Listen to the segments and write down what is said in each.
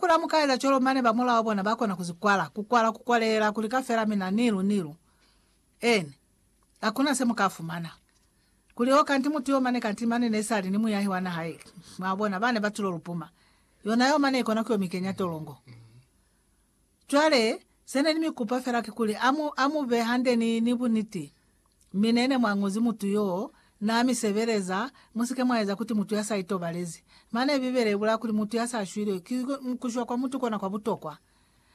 Kula mukaeza colo mane ba mulao bona ba kona kuzi kwala, ku kwala ku kwaleela kuli ka fela mina nilu nilu. En. Hakuna se muka fumana. Kuli o kanti mutu yo mane kanti mane ne sali ni muyahi wa naha ye. Mwa bona, bane ba tulo lupuma. Yona yo mane ikona ku yo mikenya tolongo. Cwale, se ne ni mi kupa fela ki kuli a mu, a mu be hande ni, ni buniti. Mi nene mwanguzi mutu yoo na mi sebeleza, musike mwaeza kuti mutu ya sa itobalezi. Mane Bibele ibulaa kuli mutu ya sa shwile ki kushwa kwa mutu kona kwa butokwa.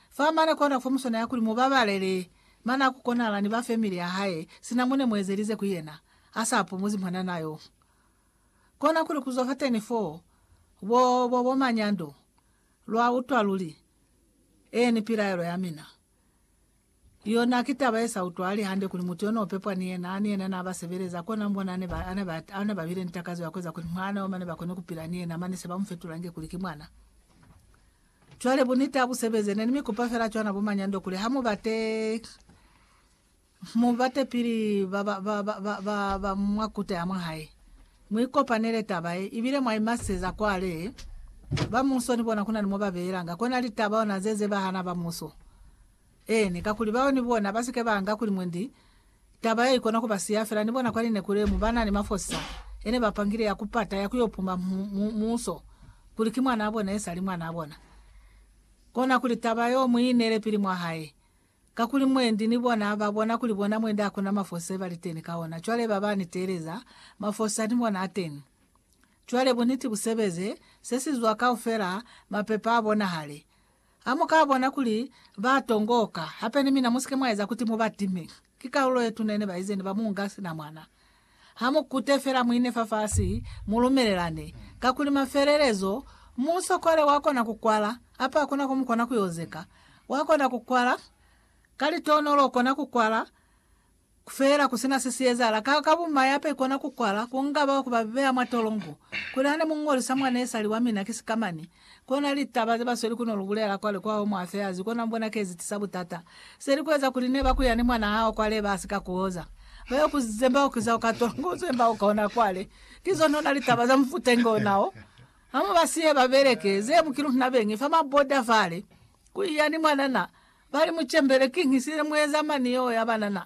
Fa mane kona fo muswanela kuli mu babalele. Mane ha ku konahala ni ba femili ya hae, sina mune mu ezelize ku yena, a sa pumuzi mwanana yoo. Kona kuli kuzwa fateni foo, bo, bo, bo manyando. Lwa utwa luli? Eeni pilaelo ya mina. Yona ki taba ye sa utwahali hande kuli mutu yo no pepwa ni yena, ni yena na ba sebeleza, kona mu bona ane ba bile ni takazo ya ku eza kuli mwana yo mane ba kone ku pila ni yena, mane se ba mu fetulange kuli ki mwana. Cwale buniti ha bu sebeze. Ne ni mi kupa fela cwana bo manyando kuli ha mu bate, mu bate pili ba, ba, ba, ba, ba, ba mwa kuta ya mwa hae. Mu ikopanele taba ye ibile mwa imaseza kwale ba muso ni bona kuna ni mo ba beelanga kona litaba ona ze zebahana ba muso. Eeni, kakuli bao ni bona ba si ke ba anga kuli mwe ndi taba ye ikona ku ba siya fela ni bona kwa lineku le mu ba na ni mafosisa ye ne ba pangile ya ku pata ya ku yo puma mu, mu, muso kuli ki mwanaa bona ye sali mwanaa bona. Kona kuli taba yo mu i inele pili mwa hae. Kakuli mwendi ni bona ba bona kuli bona mwendi hakuna mafosi ye ba li teni ka ona, cwale ba ba ni teeleza mafosi a ni bona a teni. Cwale buniti bu sebeze, se si zwa kaufela, mapepa a bonahale. Ha mu ka bona kuli ba tongoka, hape ni mina mu si ke mwa eza kuti mu ba time. Ki kalulo ye tuna ye ne ba ize ne ba mu nga sina mwana. Ha mu kute fela muine fafasi, mu lumelelane. Kakuli mafelelezo, muusokole wa kona ku kwala, apa hakuna ko mu kona ku yo zeka. Wa kona ku kwala, ka litonolo u kona ku kwala, fela ku sina se si ezahala. Ka, ka bumai apa i kona ku kwala, ku nga bao ku ba beya mwa tolongo. Kuli hane mu ñolisa mwa nesali wa mina ki sikamani, Kona litaba ze basweli kuno lubulela kwale kwa home affairs kona mbona kezi tisa butata. Seli kueza kuli neba kuya ni mwana hao kwale ba sika kuoza. Bayo ku zemba kiza uka tola ngo zemba uka ona kwale. Ki zonona litaba za mufute ngo nao. Hamu ba sihe ba beleke ze mu kilu na bengi fa ma border fale. Kuiya ni mwanana. Bali muchembele kinhi sile mueza mani yo ya banana.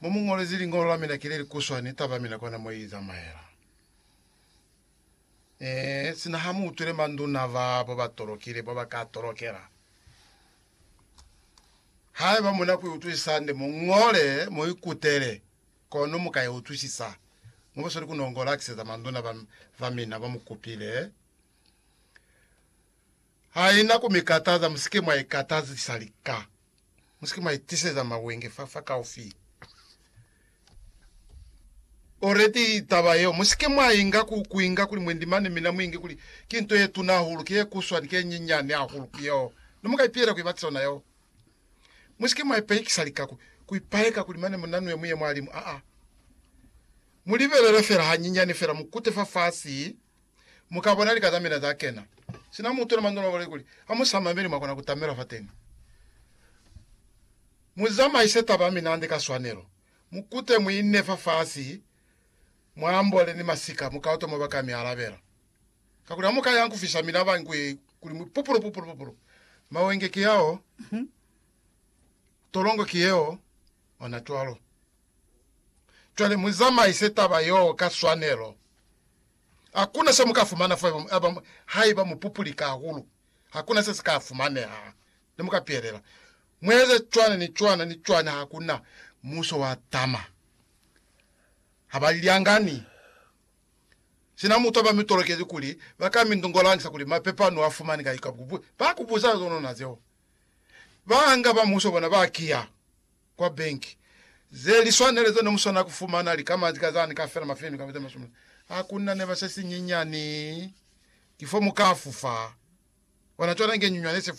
Mo mu ñolezi liñolo la mina ki le li kuswa ni taba ya mina kona mo i zamaela. Ee, sina ha mu utwile manduna ba bo ba tolokile bo ba ka tolokela. Haiba mu na ku i utwisisa hande, mu ñole, mu i kutele, kono mu ka i utwisisa. Mu ba sweli ku nongola ki seza manduna ba, ba mina ba mu kupile. Haina ku mi kataza, mu si ke mwa i katazisa lika. Musike mwa itiseza mawenge fa fa kaufi. Already taba yeo musike mwa inga ku kuinga kuli mwendi mane mina muinge kuli ki nto ye tuna hahulu, ki ye kuswa ni ki ye nyinyani hahulu ku yeo ne muka ipiyela ku ibatisa ona yeo. Musike mwa ipayekisa lika ku ku ipayeka kuli mane muna nue muye mwalimu aa. Mulibelele fela hanyinyani fela mukute fa fasi Mu ka bona lika za mina za kena. Sina mutu na manzolo a bole kuli, Ha mu sa mameli, mwa kona ku tamelwa fateni. Mu zamaise taba ya mina hande ka swanelo. Mu kute mu ine fafasi, mwa ambole ni masika, mu ka utwa mwa ba ka mi alabela. Kakuli ha mu ka yang ku fisa mina ba ngue kuli mu pupulu, pupulu, pupulu. Mawenge ki ao, tolongo ki yeo, ona cwalo. Cwale mu zamaise taba yoo ka swanelo. Hakuna se muka fumana fa haiba, haiba mu pupulika hahulu, hakuna se sika fumaneha. Ne muka pielela. Mu eza cwana ni cwana ni cwana, hakuna muso wa tama. Ha ba lyangani. Sina mutu aba mi tolokezi kuli ba ka mi ndongolangisa kuli mapepa nu a fumani kai, ba ku buza zonona zeo. Ba nga ba muso bona ba kiya. kwa benki ze li swanele ze ne mu swana ku fumana likama ka za ni ka fela mafenu kamba ze masumi a ku na ne ba se sinyinyani ki fo mu ka fufa. Bona cwana inge nyunywana ye se fufa.